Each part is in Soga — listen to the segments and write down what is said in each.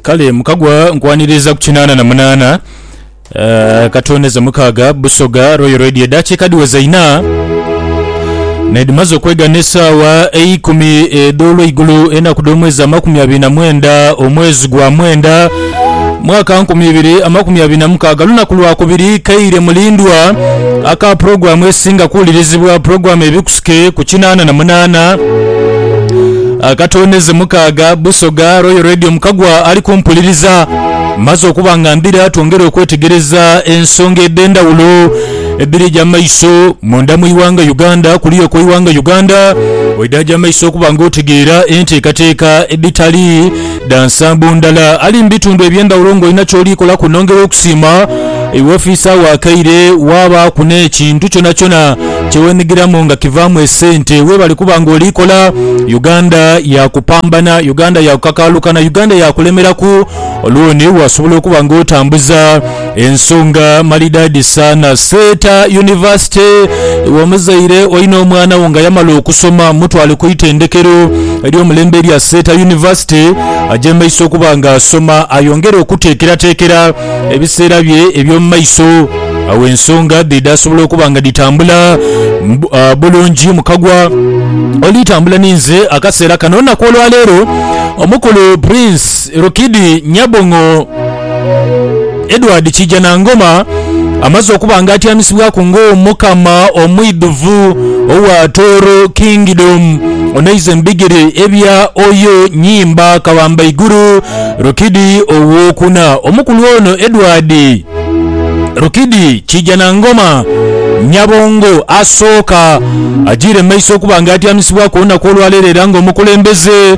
kale mukagwa nkwaniriza ku kinaana na munaana eh, katoneza mukaaga busoga royal radio edaakiika dhiweza ina nedhimaze okwega n'esaawa eikumi edh'olweigulo enaku dh'omwezi amakumi abiri na mwenda omwezi gwa mwenda mwaka nkumi ibiri amakumi abiri na mukaaga lunaku lwa kubiri kaire mulindwa aka pulogulaamu esinga kuwulirizibwa pulogulaamu ebikusike ku kinaana na munaana akatondeze mukaaga busoga royal radio mukagwa ali kumpuliriza maze okuba nga mbira twongere okwetegereza ensonga edh'endawulo ebirija mu maiso munda mu iwanga uganda kuliyo ku iwanga uganda oidhaja mu maiso okuba nga otegeera enteekateeka edhitali Dha nsambo ndala ali mu bitundu eby'endhawulo ng'olina ky'oli kola kunhongera okusiima iwe ofiisa agho akaire waabaaku n'ekintu kyonakyona kye weenhigiramu nga kivaamu esente. Weebale kuba ng'oli kola. Uganda yaakupambana, Uganda yaakukakaalukana, Uganda yaakulemeraku, olwoni waasobola okuba ng'otambuza. Ensonga malidaadi saana. Seeta yunivasite. Iwe omuzaire olina omwana wo nga yamala okusoma, mutwale ku itendekero ery'omulembe erya Seeta Yunivasite agye mu maiso okuba nga asoma ayongere okuteekerateekera ebiseera bye eby'omu maiso. Awo ensonga dhe dhaasobola okuba nga dhitambula bulungi. Mukagwa oli tambula ni nze akaseera kano. Olunaku olwaleero omukulu Prince Rukidi Nyabong'o. Edward Kiijanangoma amaze okuba nga atyamisibwaku ng'Omukama omwidhuvu owa Tooro Kingdom, onaiza ebigere ebya Oyo Nyimba Kabambaigulu Rukidi Owokuna. Omukulu ono Edward Rukidi Kiijanangoma Nyabongo asooka ajiire mu maiso okuba nga atyamisibwaku olunaku olwaleero era ng'omukulembeze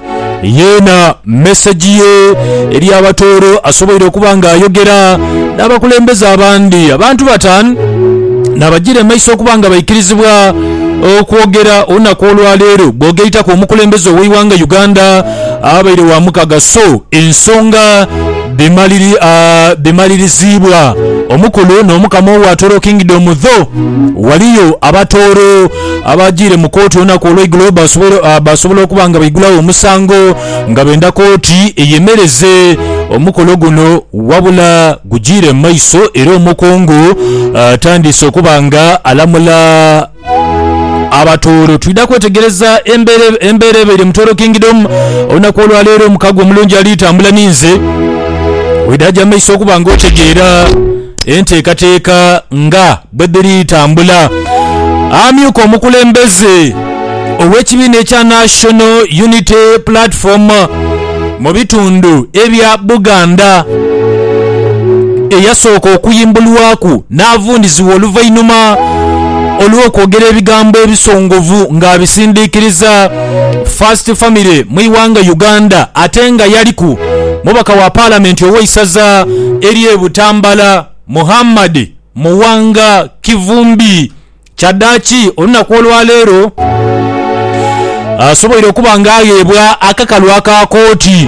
Yeena mesegi ye eri abatooro asoboire okuba ng'ayogera n'abakulembeze abandi. Abantu batan naabajira emaiso okuba nga baikirizibwa okwogera olunaku olwaleero bwogeitaku omukulembeze ow'eighanga Uganda abaire wa mukaga so ensonga dhimaliriziibwa omukulu n'omukama owa Toro Kingdom. Dho waliyo abatooro Abaagiire mu kooti olunaku olweigulo baasobola okuba nga baigulagho omusango nga benda kooti eyemereze omukolo guno wabula gugiire mu maiso era omukungu atandiise okuba nga alamula abatooro. Twidha kwetegereza embeera ebaire mu Tooro Kingdom olunaku olwaleero. Omukago omulungi ali tambula ninze oidha gya maiso okuba nga otegeera enteekateeka nga. Bwedhiri tambula, amyuka omukulembeze ow'ekibiina ekya National Unity Platform mu bitundu ebya Buganda eyasooka okuyimbulwaku n'avundhizibwa oluvainhuma olw'okwogera ebigambo ebisongovu nga abisindikiriza First Family mu ighanga Uganda ate nga yaliku mubaka wa palamenti ow'eisaza ery'e Butambala Muhammad Muwanga Kivumbi kyadaaki olunaku olwaleero asoboire okuba nga agheebwa akakalu aka kooti.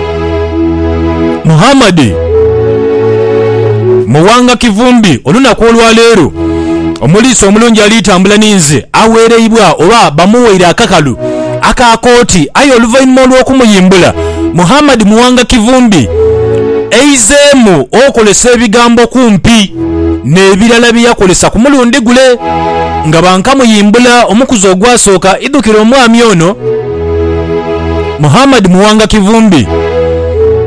Muhammad Muwanga Kivumbi olunaku olwaleero omuliisa omulungi ali tambula ninze awereibwa oba bamuweire akakalu aka kooti aye oluvainhuma olwokumuyimbula Muhammad Muwanga Kivumbi aizeemu okolesa ebigambo kumpi. n'ebirala bye yakolesa ku mulundi gule. Nga bankamuyimbula omukuzi ogwasooka, idhukira omwami ono, Muhammad Muwanga Kivumbi,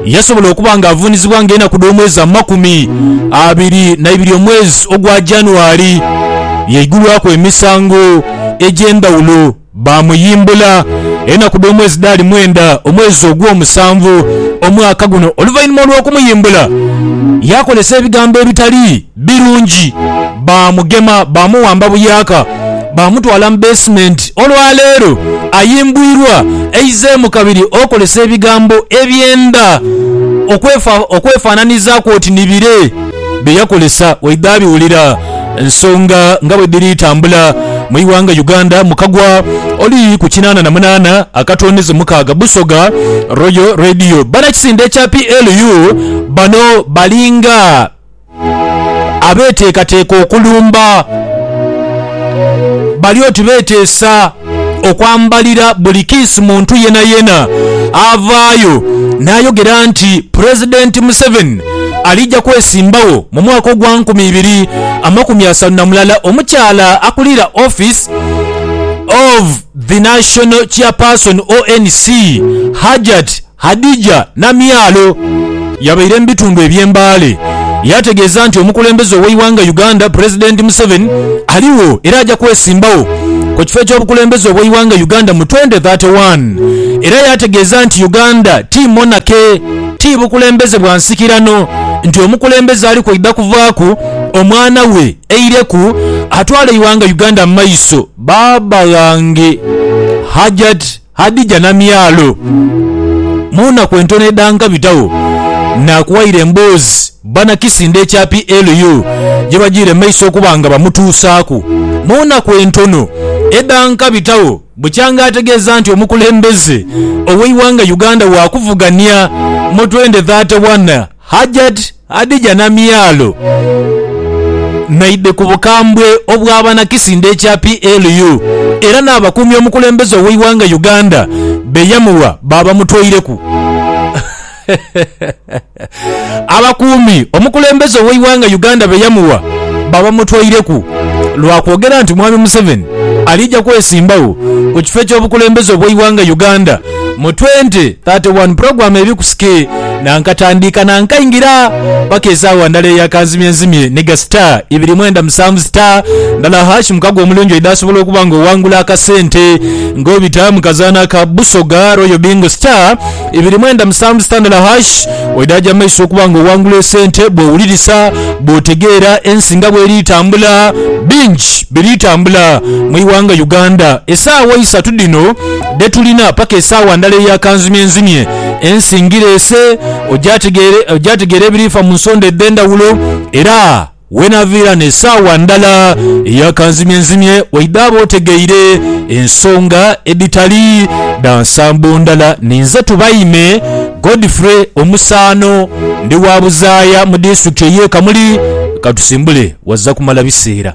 yasobola okuba nga avuunizibwa nga enaku dh'omwezi amakumi abiri na ibiri omwezi ogwa January yaigulwaku emisango egy'endhawulo. Baamuyimbula enaku dh'omwezi dhaali mwenda, omwezi ogw'omusanvu, omwaka guno. Oluvainhuma olw'okumuyimbula, yaakozesa ebigambo ebitali birungi. Baamugema, baamuwamba buyaaka, baamutwala mu beesimenti. Olwa leero ayimbwirwa, aizeemu kabiri okozesa ebigambo ebyenda okwefaananizaaku oti ni bire. bye yakolesa waidha abiwulira ensonga nga bwe dhiri tambula mu ighanga Uganda mu kagwa oli ku kinaana na munaana akatondeze mukaaga Busoga Royal Radio. Banakisinde kya PLU bano balinga abeteekateeka okulumba bali oti beteesa. okwambalira buli kiisi muntu yenayena avaayo n'ayogera nti Pulezidenti Museveni alija kwesimbawo mu mwaka ogwa nkumi ibiri amakumi asatu na mulala. Omukyala akulira Office of the National Chairperson, ONC, Hajjat. Hadijah Namyalo yabaire mu bitundu eby'e Mbale yaategeeza nti omukulembeze ow'eighanga Uganda Pulezidenti Museveni aligho era aja kwesimbagho ku kifo eky'obukulembeze obw'eighanga Uganda mu twenty thirty one era yaategeeza nti Uganda ti monarchy, ti bukulembeze bwa nsikirano nti omukulembeze ali kwaidha kuvaaku omwana we aireku atwale eighanga Uganda mu maiso. Baaba ghange Hajjat Hadija Namyalo, Mu naku entono edhanga bitagho nakuwaire emboozi bana Kisinda ekya PLU gyebagiire mu maiso okuba nga bamutuusaaku. Mu naku entono edhanka bitagho bukyanga ategeeza nti omukulembeze ow'eighanga Uganda wakuvugania mu twendi thate wana. Hajat Hadija Namyalo naidhi ku bukambwe obwa banakisinde ekya PLU era n'abakuumi omukulembeze ow'eighanga Uganda be yamugha baabamutweireku. Abakuumi omukulembeze ow'eighanga Uganda be yamugha baabamutweireku lwa kwogera nti Mwami Museveni aliija kwesimbagho ku kifo eky'obukulembeze obw'eighanga Uganda mu 2031 pulogulaamu eri ku ski na nkatandiika na nkaingira paka esaawa ndala eya kanzimyenzimye ni ga star ibiri mwenda musanvu star ndala hash mukago omulungi oidha asobola okuba nga owangula akasente nga obita mu kazaana aka Busoga Royal Bingo star ibiri mwenda musanvu star ndala hash oidha aja mu maiso okuba nga owangula esente bw'owulirisa bw'otegeera ensi nga bw'eri tambula bingi biri tambula mu iwanga Uganda esaawa isatu dhino dhe tulina paka esaawa ndala eya kanzimyenzimye. Ensi ngireese ogyategeere, ogyategeere ebiriifa mu nsonda edh'endhawulo, era weenaaviira n'esaawa ndala eya kanzimyenzimye waidhaaba otegeire ensonga edhitali dha nsambo ndala. Ninze Tubaime Godfrey Omusaano, ndi wa buzaaya mu disitulikiti ey'e Kamuli. Katusimbule, wazza kumala biseera.